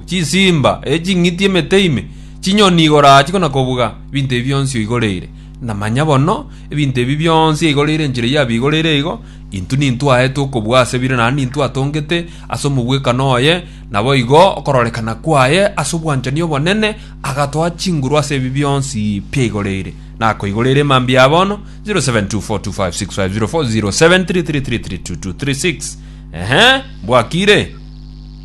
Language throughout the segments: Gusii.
Chisimba, ee ching'iti, emete ime, chinyoni igoro aa chikona kobuga, ebinto ebi bionsi oigoreire. Na manya bono, ebinto ebi bionsi eigoreire enchera yabio eigoreire igo, intwe nintwe aetwe okobuga ase bire naende nintwe atongete ase omobwekano oye, naboigo okororekana kwaye ase obwanchani obonene agatoa chinguru ase ebi bionsi biaigoreire. Nakoigoreire mambia aa bono, 0724256504 0733332236 Ehe, mbwakire.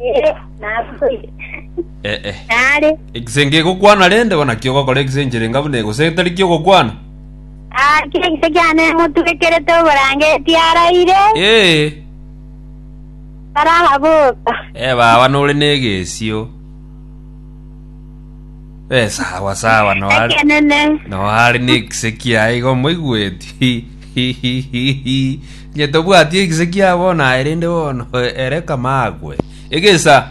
Ee, naboire. Eh, eh. Nare. Egise ngegokwana rende, bono naki ogokora egise enchere enga buna eye, gose getari kiogokwana? Ah, kire gise kiane emotwekerete oborangeti araire, Ee, taraha boka. eh, baba nore negesio. Eh, sawa sawa, noare. Ekenene. noare negise kiaye igo moigweti Inye tobwati egise kia bono aye rende bono ere kama agwe. Egesa.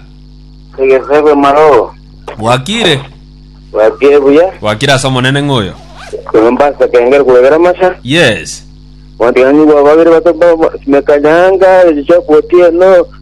Egesa gwe maro. Bwakire. Bwakire buya. Bwakire ase omonene ng'oyo. Koromba ase kengere kwegera masha. Yes. Wandigani gwa babere bato simekanyanga echichoko otieno.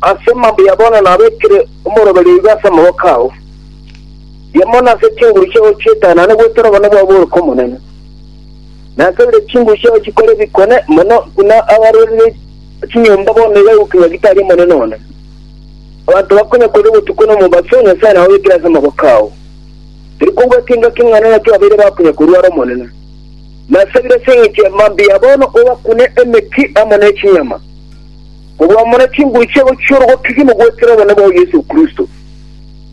Ase mambia ya bono nabekire omoroberio iga ase amaboko ao, rigia mono ase chinguru chiao chi'etaya nane gwetera obonene bwao bore kw'Omonene. Nasabire chinguru chiao chikore bikone mono buna abarorire chinyomba bono iga gokinya gitari Omonene one. Abanto bakonya korire botuko na omobaso, Nyasae nababekire ase amaboko ao. Tari kobua ekenga keng'ana nakio babeire bakonya korwara Omonene. Nasabire ase engencho ya mambia ya bono obakune emeki amo ne chinyama. Korwa omore chinguru chiabo chi'orogokigia mogoetera obonene bwao Yeso Kristo.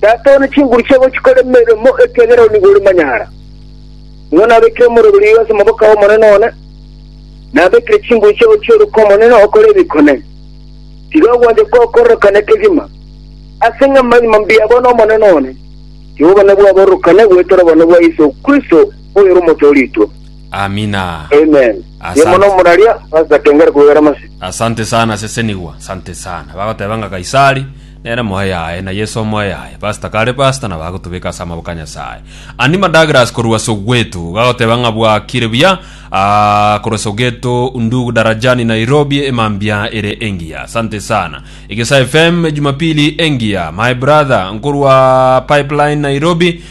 Tata one chinguru chiabo chikore emeremo, ekiagera oo nigo ore manyara. Nigo nabekire omorero riiga ase omoboko ay'Omonene one, nabekire chinguru chiabo chi'oroke Omonene okore ebikone. Tiga ogwancha kwao kororokane kegima, ase ng'a amanyma mbuya abo n'Omonene one, tiga obonene bwao bororokane goetera obonene bwa Yeso Kristo, oyore Omotoorigwa. Amina. Amen. Asante. Yemona omuraria pastor kengere kuwera masi. Asante sana sesenigwa. Asante sana. Bagoteba nga Kaisari nere moe yaye na Yesu omoe yaye. Pastor kare pastor na bagotubeka asa amaboko a Nyasaye. Anima Douglas korwa Soweto gagoteba nga bwakire buya ah, korwa Soweto ndugu Darajani Nairobi emambia ere engiya. Asante sana. Egesa FM Jumapili engiya. My brother nkorwa Pipeline Nairobi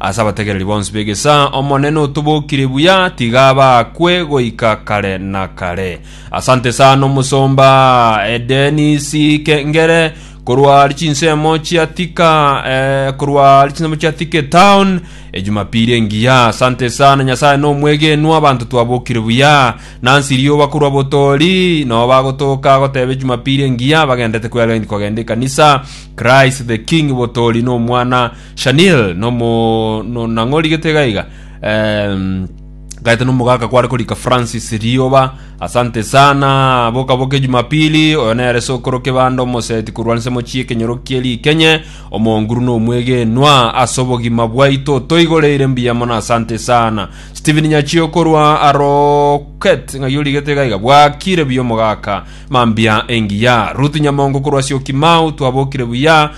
Ase abategereri bonsi b'egesaa, Omonene otobokire buya, tiga baakwe goika kare na kare. Asante sana omosomba eh, Dennis Kengere korwa chinsemo chia Thika eh, korwa chinsemo chia Thika Town ejumapili engiya. Asante sana Nyasaye nomwegenwa, abanto twabokire buya nansi rioba korwa botori nao bagotoka goteba ejumapili engiya bagendete kwera gindi kogenda ekanisa. Christ the King botori nomwana Shanil nomo no nang'ori gete iga iga Em, gaete nomogaka kware korika Francis Rioba asante sana boka boke Jumapili oyo nere sokoro kebanda omoseti korwanse mochie kenyoro kie rikenye omonguru no omwegenwa ase obogima bwaito toigoreire mbuya mono asante sana Steven Nyachio korwa Aroket ng'ai origete iga iga bwakire buya omogaka mambia engiya Ruth Nyamongo korwa Syokimau twabokire buya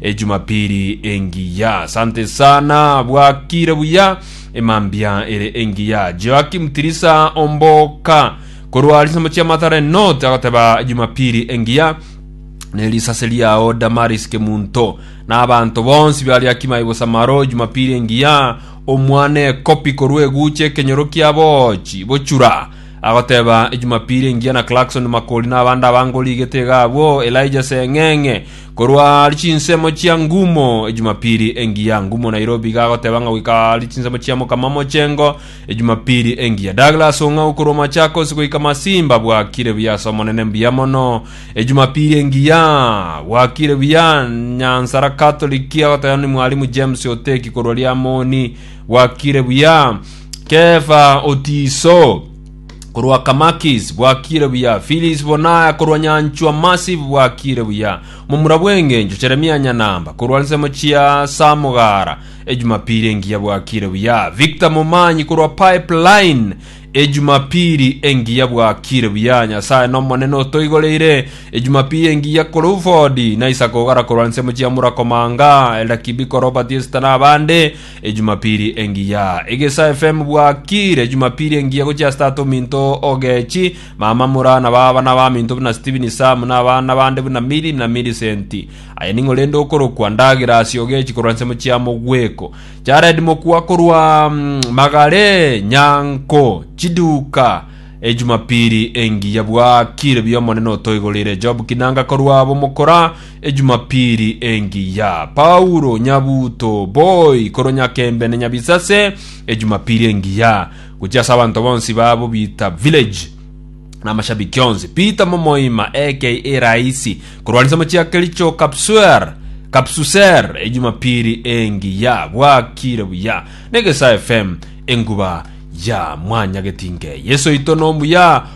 Ejumapili engiya. Asante sana bwakire buya emambia ere engiya. Joakim Tirisa Omboka korwa Lisemo chia Mathare North agoteba Ejumapili engiya ne risase riao Damaris Kemunto na abanto bonsi baria Kimai Bosamaro Ejumapili engiya omwane ekopi korwa eguche ekenyoro kia bochi bochura agoteba Ejumapili engiya na Clarkson Makori na abande abange origete iga abwo Elijah Seng'eng'e Korwa ari chinsemo chia ngumo ejumapiri engiya ngumo Nairobi iga agoteba ng'a goika ari chinsemo chia mokama mochengo ejumapiri engiya Douglas Ong'au korwa Machakos goika Masimba bwakire buya ase omonene mbuya mono ejumapiri engiya bwakire buya Nyansara Catholic agoteba ni mwalimu James Oteki korwa Liamoni bwakire buya Kefa Otiso korwa Kamakis bwakire buya, Filis Bonaya korwa nyanchwa Massive bwakire buya, momura bw'engencho Jeremia Nyanamba korwa nsemo chia Samogara ejumapiri engiya bwakire buya, Victor Momanyi korwa Pipeline ejumapiri engiya bwakire buya, Nyasaye nomonene otoigoreire ejumapiri engiya Cruford na Isaac Ogara korwa nsemo chia Murakomanga, Elder Kibiko Robert Esther na abande Ejumapiri engiya Egesa FM bwakiire Jumapiri engiya gochia ase tata ominto Ogechi, mama Mura na baba na abaminto buna Stephen Sam na abana bande buna Milly na Millicent. Aye ning'o rende okorokwa ndagera ase Ogechi korwa nse mochia mogweko. Jared Mokua korwa Magare, Nyanko, Chiduka. Ejumapiri engiya bwakiire biomonene otoigoreire Job Kinanga korwa Bomokora, Ejumapili engiya, Paulo nyabuto boi korwa Nyakembe na Nyabisase, Ejumapili engiya, gochia ase abanto bonsi ba Bobita Village na amashabiki onsi, Peter Momoima aka Raisi korwa Alisa Mochiakericho Kapsuer, Kapsuser, Ejumapili engiya, bwakire buya na Egesae FM, enguba ya Mwanyagetinge. Yeso oito nomuya,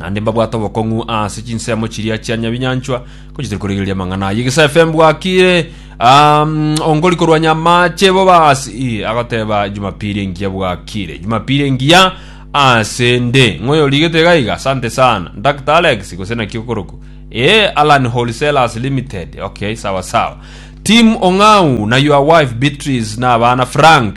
naende mbabwate obokong'u ase chinsemo chiria chia nyabinyanchwa, ko chitari korigereria amang'ana ayio. Gesa FM bwakire, um, ongori korwanya amache bobasi, agoteba Jumapili engiya bwakire. Jumapili engiya ase nde. Ng'oyo rigete gaiga, asante sana. Dr. Alex, gose naki okoroku. Eh, Alan Wholesalers Limited. Okay, sawa sawa. Team Ong'au na your wife Beatrice na abana Frank.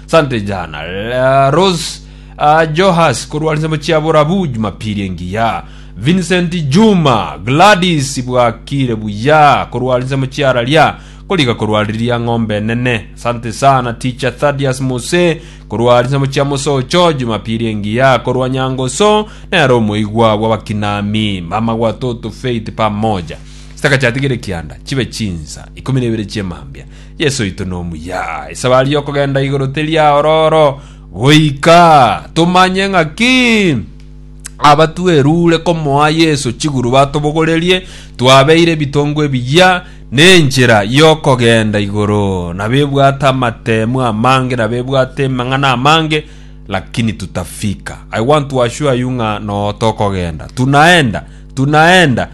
Sante jana La Rose ah, Johas korwa nsemo chia borabu Jumapili engiya Vincent Juma Gladys bwakire buya korwa nsemo chia raria koriga korwa riria ng'ombe enene Sante sana teacher Thaddeus Mose korwa nsemo chia mosocho Jumapili engiya korwa nyangoso nero omoigwa bw'abakinami mama watoto Faith pamoja Sitaka chiatigire kianda chibe chinsa ikomi na ibere chiemambia Yesu oito nomuya. Esabari y'okogenda igoro teri aororo goika tomanye ng'aki abatwerure komoa Yesu chiguru batobogorerie, twabeire ebitongo ebiya nenchera y'okogenda igoro. Nabebwate amatemu amange, nabebwate emang'ana amange, lakini tutafika. I want to assure you ng'a noo tokogenda. Tunaenda, tunaenda.